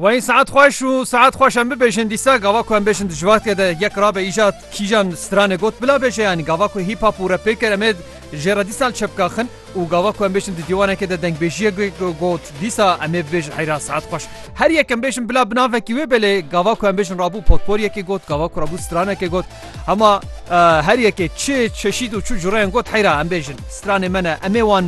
Wayîn saet xweş û saet xweş em bibêjin dîsa gava ku em bêjin di civakê de yek rabe îja kîjan stranê got bila bêje yanî gava ku hîp hap û rep pê kir em ê jê re dîsa li çep kaxin û gava ku em bêjin di dîwanekê de dengbêjiyek got dîsa em ê bibêjin heyra saet xweş her yek em bêjin bila bi navekî wê belê gava ku em bêjin rabû potporiyekê got gava ku rabû stranekê got hema her yekê çi çeşîd û çi cureyên got heyra em bêjin stranê me ne em ê wan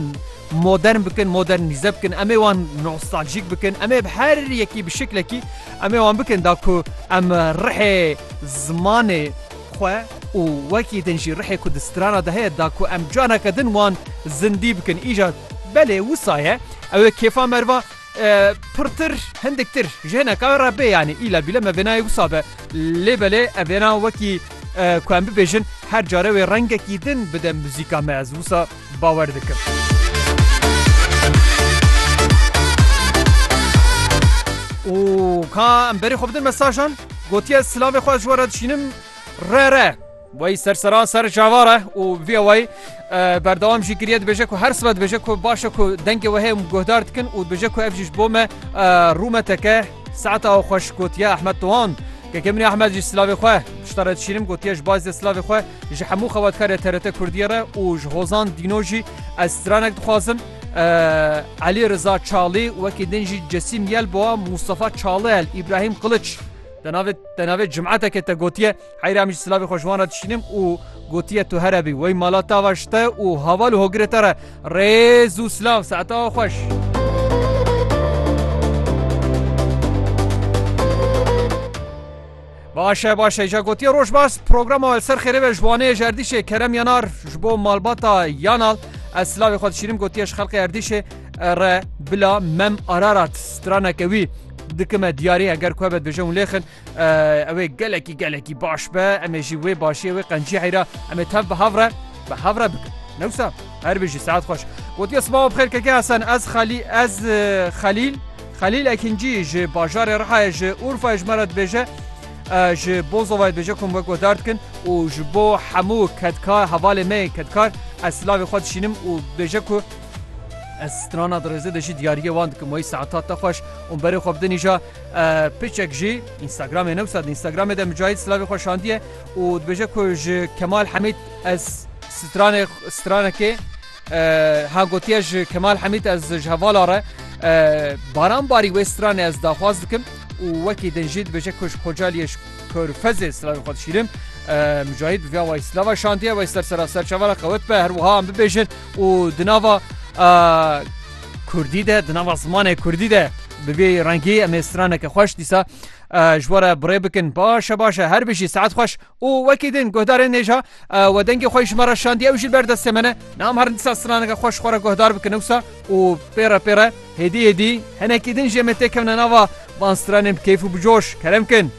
modern bikin, modernîze bikin, em ê wan nostaljîk bikin, em ê bi her yekî bi şiklekî em ê wan bikin da ku em rihê zimanê xwe û wekî din jî rihê ku di strana de heye da ku em caneke din wan zindî bikin. Îcar belê wisa ye ew ê kêfa merva Pirtir hindik tir ji hineka wê re bê yanî îla bîle me vênayê wisa be. Lê belê ev vêna wekî ku em bibêjin her care wê rengekî din bide muzîka me ez wisa bawer dikim. û ka em berê xwe bidin mesajan gotiye silavê xwe ji we re dişînim re re. Wey serseran ser cavar e û vê wey berdewam jî kiriye dibêje ku her sibe dibêje ku başe ku dengê we heye guhdar dikin û dibêje ku ev jî ji bo me rûmeteke saeta aw xweş gotiye Ahmed Tohan. Keke min Ahmed jî silavê xwe pişta re dişînim gotiye ji bazê silavê xwe ji hemû xebatkarê TRT Kurdiyê re û ji hozan dîno jî ez stranek dixwazim Elî Riza Çalî wekî din jî Cesîm Yelbowa Mustafa Çalel Îbrahîm Qiliç te navê te navê cimeteke te gotiye Heyra min ji silavê xwe ji wan re dişînim û gotiye tu here bî wey mala te ava ji te û haval û hogirê te re rêz û silav saete ava xweş. Baş e baş e ja gotiye roj baş programa li ser xêrê ve ji wanê ji erdîşê kerem yanar ji bo malbata yanal ez silavê xwe dişînim gotiye ji xelqê erdîşê re bila mem ararat straneke wî dikime diyarî eger ku hebet bêje hûn lêxin Ew ê gelekî gelekî baş be, em ê jî wê başiyê wê qenciyayî re em ê tev bi hev re bi hev re bikin. Newsa her bijî saet xweş. Gotiye sibawa bixêr keke Hesen ez xelî ez xelîl xelîl ekincî ji bajarê Rihayê ji Urfayê ji me re dibêje ji bo zovayê dibêje kom wek we dar dikin û ji bo hemû kedkar hevalê me kedkar ez silavê xwe dişînim û dibêje ku ez strana dirêzê de jî diyariyê wan dikim wayî saetat te xweş û berê xwe bidinîja Piçek ji Instagramê newsa di Instagramê de Micahit Slavê xwe şandiye û dibêje ku ji Kemal Hemîd ez stranê stranekê ha gotiye ji Kemal Hemîd ez ji hevala re baran barî wê stranê ez daxwaz dikim û wekî din jî dibêje ku ji Xocaliyê ji Körfezê slavê xwe dişîrim. Micahit bi vê awayî slava şandiye wey ser sera serçavara qewet be her wiha em bibêjin û di nava Kurdî de di nava zimanê Kurdî de bi vê rengî em ê straneke xweş dîsa ji we re birê bikin baş e baş e her bijî saet xweş û wekî din guhdarên nêja we dengê xwe ji me re şandiye ew jî li ber destê me ne nam herin dîsa straneke xweş xwe re guhdar bikin ewsa û pêre pêre hêdî hêdî hinekî din jê me têkevne nava van stranên bi keyf û bi coş kerem kin.